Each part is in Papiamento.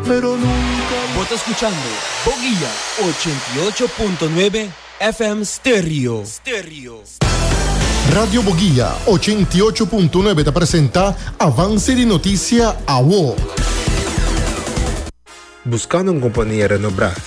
pero nunca. Bo ta scuchando Boguia ochenta i ocho punto nuebe FM Stereo. Radio Boguia ochenta i ocho punto nuebe ta presenta Avance di Noticia, awo. Buscando un compania renobrá?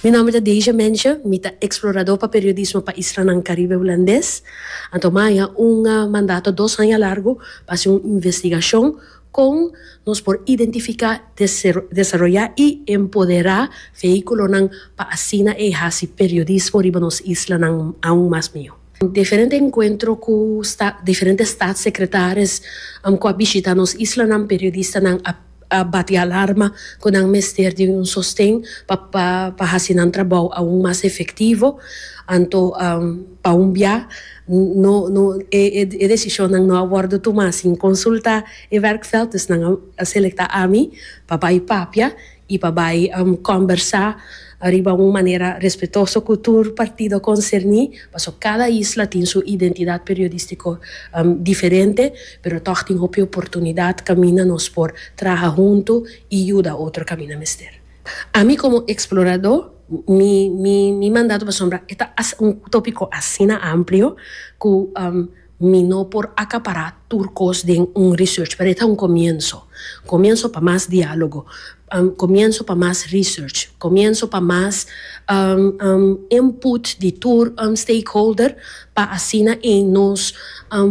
Mi nomber ta Deja Mensje, mi ta explorador pa periodismo pa islanan Caribe Hulandes. Anto mi a haña un mandato dos haña largo pa haci un investigacion con nos por identifica, desaroya y empodera vehiculonan pa asina e haci periodismo riba nos islanan aun mas miho. Diferente encuentro cu diferente Staatssecretaris cu a bishita nos islanan, periodistanan a. a bati alarma cu nan mester di un sosten pa pa haci nan trabou aun mas efectivo, anto pa un bia no no e e decisionnan no a wordo tuma sin consulta e werkveld, dus nan a selecta ami pa bay papia y pa bay combersa riba un manera respetoso cu tur partido concerni. Paso cada isla tin su identidad periodistico diferente, pero tog tin hopi oportunidad caminda nos por traha hunto y yuda otro caminda mester. Ami como explorador, mi mi mi mandato pasobra e ta un topico asina amplio cu. Mi no por acapará tur cos den un research, pero e ta un comienso. Comienso pa mas diálogo, comienso pa mas research, comienso pa mas input di tur stakeholder pa asina ein nos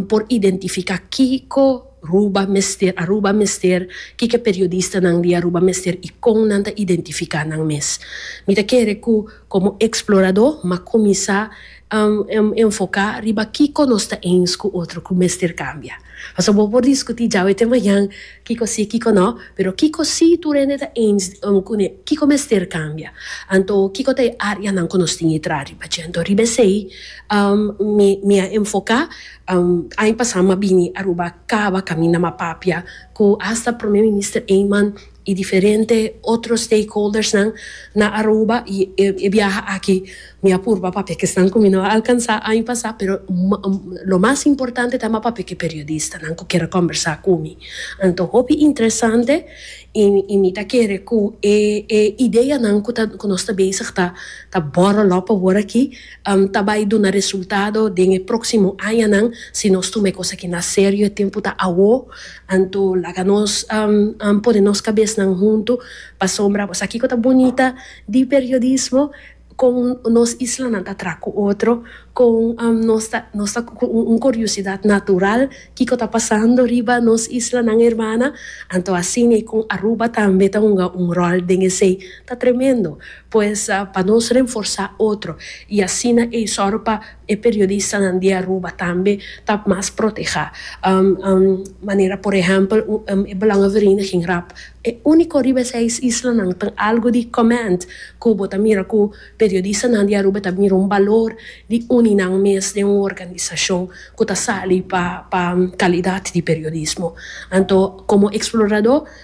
por identifica kico Ruba mester, Aruba mester, kico e periodistanan di Aruba mester y con nan ta identifica nan mes. Mi ta kere cu como explorador m'a cuminsa Enfoká riba kiko nos ta eens ku otro ku mester kambia. Pasobra bo por diskutí djawe te mañan kiko sí, kiko no, pero kiko sí tur hende ta eens ku ne, kiko mester kambia. Anto kiko ta e áreanan ku nos tin e traha riba dje. Anto riba esei mi mi a enfoká. Aña pasá mi a bini Aruba kaba kaminda mi a papia ku asta Prome Minister Eman y diferente otro stakeholdersnan na Aruba y e biaha aki mi a purba papia ke esnan ku mi no a alkansa año pasa pero lo mas importante ta papia ke periodistanan ku kere kombersa ku mi anto hopi interesante y mi ta kere ku e e ideanan ku ta ku nos ta bezig ta ta borrel op pa wor aki ta bai duna resultado den e proksimo añanan si nos tuma e kosaki na serio e tempu ta awo. Anto laga nos pone nos kabesnan huntu pasobra bo sa kiko ta bunita di periodismo, kon nos islanan ta traha ku otro, kon nos ta nos ta ku un kuriosidat natural kiko ta pasando riba nos islanan hermana, anto asina kon Aruba tambe ta hunga un ròl den esei ta tremendo, pues pa nos renforsá otro i asina ei sòru pa. E periodistanan di Aruba tambe ta mas protehá manera por ehèmpel e belònga vereniging rap. E úniko riba e seis islanan ku tin algu di comment ku bo ta mira ku periodistanan di Aruba ta mira un balor di uni nan mes den un organisashon ku ta sali pa kalidat di periodismo. Anto komo eksploradó.